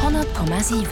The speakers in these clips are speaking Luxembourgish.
100,7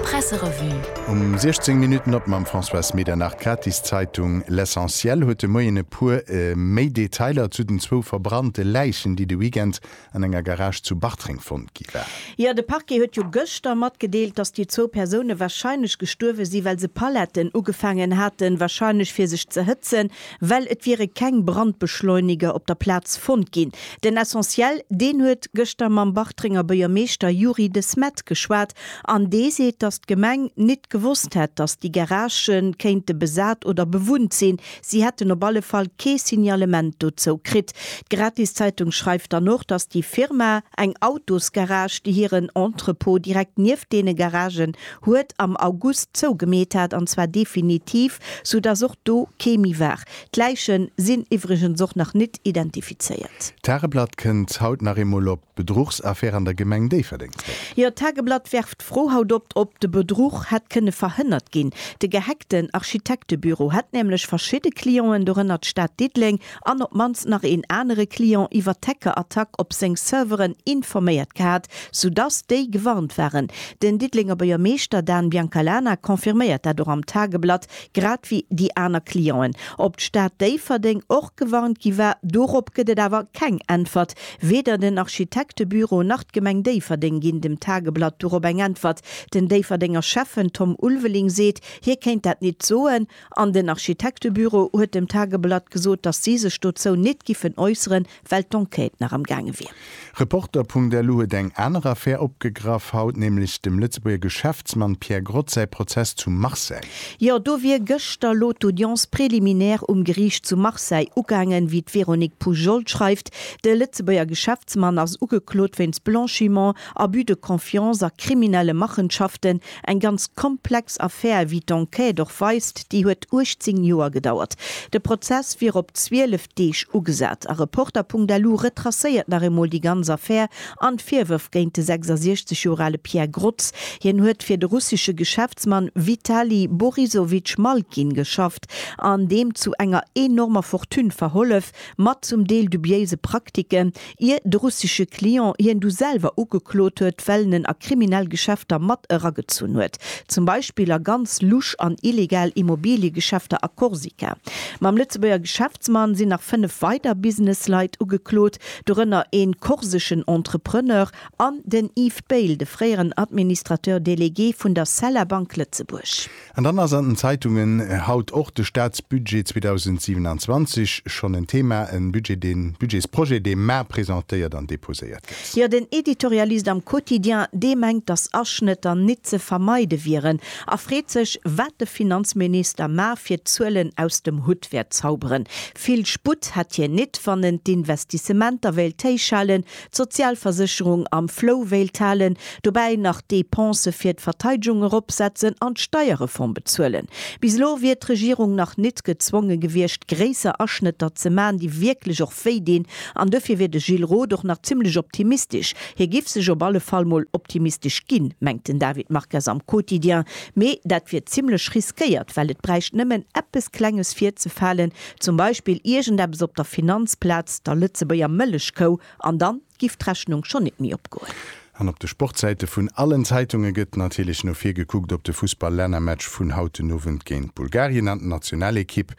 Presserevue Um 16 Minutten op mam Françoise Medernach. D'Gratiszeitung L'Essentiel huet de Moien e puer méi Detailer zu den zwou verbrannte Läichen, déi de Weekend an enger Garage zu Bartreng fonnt gi waren. Jo, de Parquet huet jo gëschter matgedeelt, datt déi zwou Persoune warscheinlech gestuerwe si well se Paletten ugefaangen haten, warscheinlech fir sech ze hëtzen. well et wiere keng Brandbeschleuniger op der Plaz fonnt ginn. Den Essentiel, deen huet gëschter mam Bartrenger Buergermeeschter Youri de Smet geschwat an dee seet, datt d'Gemeng nit gewosst hätt, datt déi Garagë kéinte besat oder bewunnt sinn. Si hätten op alle Fall kee Signalement dozou kritt. D'Gratiszeitung schreift dann och, datt déi Firma eng Autosgarage, déi hiren Entrepôt direkt nieft deene Garagen huet am August zougemeet hat, an zwar definitiv, sou dass och do kee méi war. D'Läiche sinn iwwregens och nach nit identifizéiert. D'Tageblatt kënnt haut nach eemol op d'Bedruchsaffär an der Gemeng Déifferdeng zréck. Jo, d'Tageblatt werft d'Fro haut op, ob de Bedruch hätt kënne verhënnert ginn. De gehackten Architektebüro hätt nämlech verschidde Clienten, dorënner d'Stad Diddeleng an op d'mannst nach een anere Client iwwert d'Hackerattack op seng Serveren informéiert gehat, soudass déi gewarnt waren. Den Diddelenger Buergermeeschter Dan Biancalana confirméiert dat och am Tageblatt, grad wéi déi aner Clienten. Ob d'Stad Déifferdeng och gewarnt gi war, dorop gëtt et awer keng Äntwert. Weder den Architektebüro nach d'Gemeng Déifferdeng ginn dem Tageblatt dorop eng Äntwert. Den Déifferdenger Schäffen Tom Ulveling seet, hie kéint dat nit soen. An den Architektebüro huet dem Tageblatt gesot, datt si sech dozou nit giffen äusseren, well d'Enquête nach am gaange wier. Reporter.lu huet eng aner Affär opgegraff, haut nämlech dem Lëtzebuerger Geschäftsmann Pierre Grotz säi Prozess zu Marseille. Jo, do wier gëschter lo d'Audience préliminaire um Geriicht zu Marseille ugaangen, wéi d'Véronique Poujols schreift. De Lëtzebuerger Geschäftsmann ass ugeklot wéinst Blanchiment, Abus de confiance a kriminelle Machenschaften. Eng ganz komplex Affär, wéi d'Enquête och weist, déi huet 18 Joer gedauert. De Prozess wier op 12 Deeg ugesat. A Reporter.lu retracéiert nach eemol déi ganz Affär an d'Virwërf géint de 66 Joer ale Pierre Grotz. Hien huet fir de russesche Geschäftsmann Vitali Borisowitsch Malkin geschafft an deem zu enger enormer Fortune verhollef. mat zum Deel dubiéise Praktiken, ier de russesche Client hien du selwer ugeklot huet, well en en a kriminell Geschäfter mat eragezunn huet, zum Beispill a ganz lusch an illegal Immobiliegeschäfter a Korsika. Mam Lëtzebuerger Geschäftsmann sinn nach fënnef weider Businessleit ugeklot, dorënner ee korseschen Entrepreneur an den Yves Bail, de fréieren Administrateur délégué vun der Cella Bank Lëtzebuerg. An dann ass an den Zeitungen haut och de Statsbudget 2027 schonn en Thema, e Budget, dee Budgetsprojet, dee mar presentéiert an deposéiert gëtt. Jo, den Editorialist am Quotidien, dee mengt, datt Aschnëtter nit ze vermeide wieren a freet sech, wat de Finanzminister mar fir d'Zuelen aus dem Hutt wäert zauberen. Vill Sputt hätt hien nit, wann en d'Investissementer wéilt héichhalen, d'Sozialversécherung am Flou wéilt halen, dobäi nach d'Dépensë fir d'Verteidgung eropsetzen an d'Steierreform bezuelen. Bis elo wier d'Regierung nach nit gezwonge gewiescht, gréisser Aschnëtter ze man, déi wierklech och wéi dinn. An dofir wier de Gilles Roth och nach zimmlech optimistesch. Hie giff sech op alle Fall mol optimistesch ginn, mengt den David Marques am Quotidien. Mee dat wier zimmlech riskéiert, well et bräicht nëmmen eppes Klenges virzefalen, Zum Beispill iergendeppes op der Finanzplaz, der Lëtzebuerger Mëllechkou, an dann giff d'Rechnung schon nit méi opgoen. An op de Sportsäite vun allen Zeitunge gëtt natierlech no vir gekuckt op de Fussball-Lännermatch vun haut den Owend géint Bulgarien an d'Nationalekipp.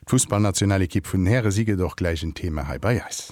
D'Fussballnationalekipp vun den Häre si gëtt och gläich en Thema hei bei eis.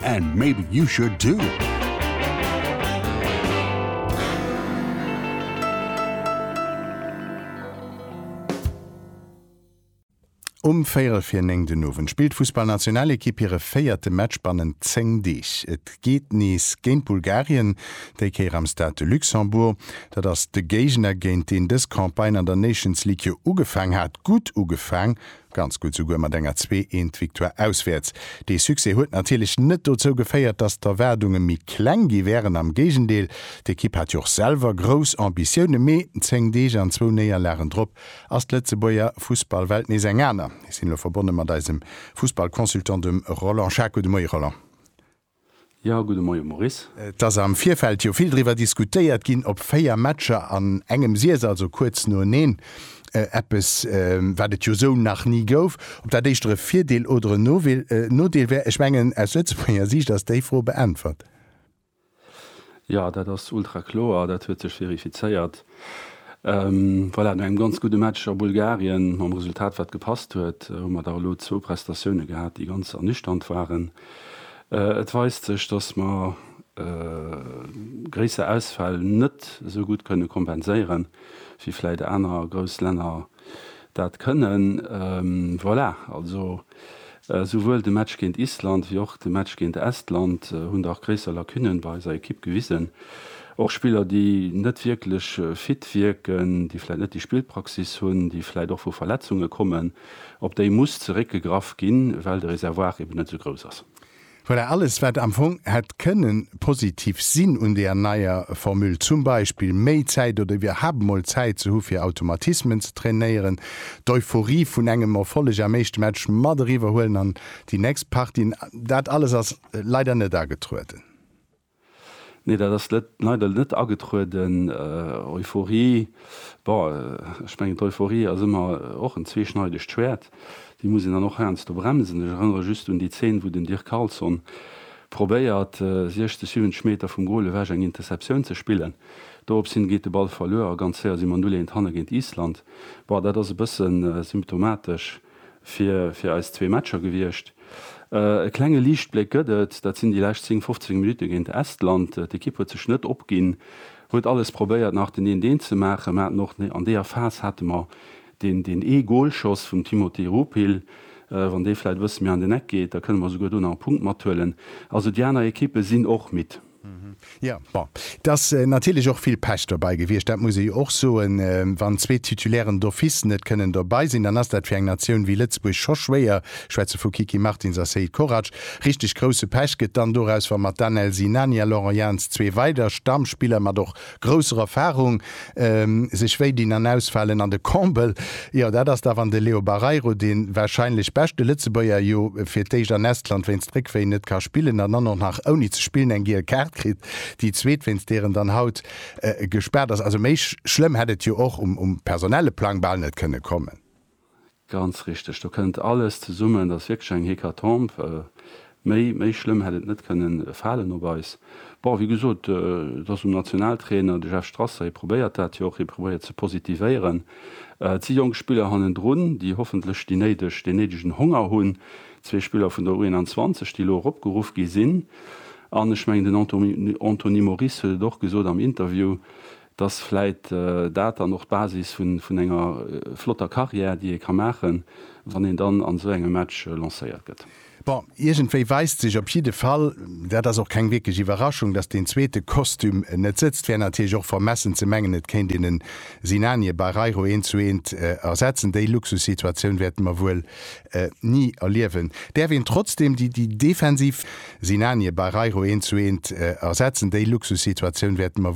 And maybe you should too! Um véierel vir néng den Owend spillt d'Fussballnationalekipp hire véierte Match bannent 10 Deeg. Et geet nees géint Bulgarien, déi Kéier am Stade de Luxembourg. Dat ass de Géigner, géint deen dës Campagne an der Nations League jo ugefaang hat, gutt ugefaang, Ganz gutt, souguer mat enger zwee eent Victoire auswäerts. Dee Succès huet natierlech net dozou geféiert, datt d'Erwaardunge méi kleng gi wären, am Géigendeel. D'Ekipp hat jo och selwer grouss Ambitioune, mee zéng Deeg an zwou Néierlagen drop ass d'Lëtzebuerger Fussballwelt nees eng aner. Mir sinn elo verbonne mat eisem Fussballconsultant, dem Roland Schako. De Moie Roland. Jo, gudde Moie Maurice. Et ass am Virfeld jo vill driwwer diskutéiert ginn, ob véier Matcher an engem Siess, also kuerz noeneen, eppes, wat et jo esou nach ni gouf, ob dat éischter e Virdeel oder en Nodeel wär. Ech mengen, aus Lëtzebuerger Siicht ass déi Fro beäntwert. Jo, dat ass ultra kloer, dat huet sech verifizéiert. Voilà, no engem ganz gudde Match a Bulgarien, mam Resultat wat gepasst huet, hu mer da elo zwou Prestatioune gehat, déi ganz ernüchternd waren. Et weist sech, datt mer gréisser Ausfäll net esou gutt kënne kompenséieren, wéi vläicht aner grouss Länner Dat kënnen, voilà, also souwuel de Match géint Island wéi och de Match géint Estland hunn dach gréisser Lacunen bei eiser Ekipp gewisen. Och Spiller, déi net wierklech fit wierken, déi vläit net déi Spillpraxis hunn, déi vläit och vu Verletzunge kommen, op déi muss zeréckgegraff ginn, well de Reservoir eben net esou grouss ass. Voilà, alles wat am Fong hätt kënnen positiv sinn un deer neier Formule, zum Beispill méi Zäit oder iwwerhaapt mol Zäit ze hu fir Automatismen ze trainéieren, d'Euphorie vun engem Erfolleg am éischte Match mat eriwwer huelen an déi nächst Partien, dat alles ass leider net agetrueden. Nee, dat ass net, leider net agetrueden. Euphorie, bon, ech mengen d'Euphorie ass ëmmer och en zweeschneidegt Schwäert, déi muss een dann och heiansdo bremsen. Ech erënnere just un déi Zeen, wou den Dirk Carlson probéiert, 60, 70 Meter vum Goal ewech eng Interceptioun ze spillen. Dorops hin geet de Ball verluer a ganz séier si mer 0, 1 hanne géint Island. Bon, dat ass e bëssen symptomatesch. fir fir eis zwee Matcher gewiescht. E klenge Liichtbléck gëtt et, dat sinn déi lescht 10, 15 Minutte géint Estland. D'Ekipp huet sech net opginn, huet alles probéiert nach den Eent Eent ze maachen. Mer haten och an deeër Phas hate mer deen deen ee Golschoss vum Timothy Rupill. Wann dee vläit e bësse méi an den Eck geet, da kënne mer souguer do nach e Punkt mathuelen. Also déi aner Ekippe sinn och midd. Jo, bon, et ass natierlech och vill Pech dobäi gewiescht, dat muss ee jo och soen. Wann zwee Titulairen d'office net kënnen dobäi sinn, dann ass dat fir eng Natioun wéi Lëtzebuerg scho schwéier, ech schwätze vu Kiki Martins a Seid Korac. Richteg grousse Pech gëtt dann doraus, wa mat Danel Sinani a Laurent Jans zwee weider Stammspiller, mat och Grousser Erfahrung, sech wéi dinn an ausfalen an de Combel, jo dat ass da wann de Leo Barreiro, de wahrscheinlech beschte Lëtzebuerger, jo fir d'éischt an Estland wéinst Réckwéi net ka spillen an dann och nach ouni ze spillen eng giel Kaart kritt, déi zweet wéinst deer en dann haut gespaart ass. Also méi schlëmm hätt et jo och um personelle Plang bal net kënne kommen. Ganz richteg, do kënnt alles zesummen. Dat ass wierklech eng Hécatombe. Méi, méi schlëmm hätt et net kënnen falen op eis. Bon, wéi gesot, et ass um Nationaltrainer, de Jeff Strasser, hie probéiert dat jo och, hie probéiert ze positivéieren. Et si jonk Spiller hannendrun, déi hoffentlech déi néideg, deen néidegen Honger hunn. Zwee Spiller vun der U21, déi elo eropgeruff gi sinn. An ech mengen, den Anto, Anthony Moris huet et och gesot am Interview, Dass vläit dat dann och d'Basis vun enger flotter Carrière, déi ee ka maachen, wann een dann an esou engem Match lancéiert gëtt. Bon, iergendwéi weist sech op jidde Fall, dat ass och keng wierklech Iwwerraschung, dass deen zweete Kostüm net sëtzt. Wär natierlech och vermessen ze mengen, et kéint een en Sinanie Barreiro eent zu eent ersetzen. Déi Luxussituatioun wäerte mer wuel ni erliewen. Däerf een trotzdeem déi defensiv. Sinanie Barreiro eent zu eent ersetzen. Déi Luxussituatioun wäerte mer.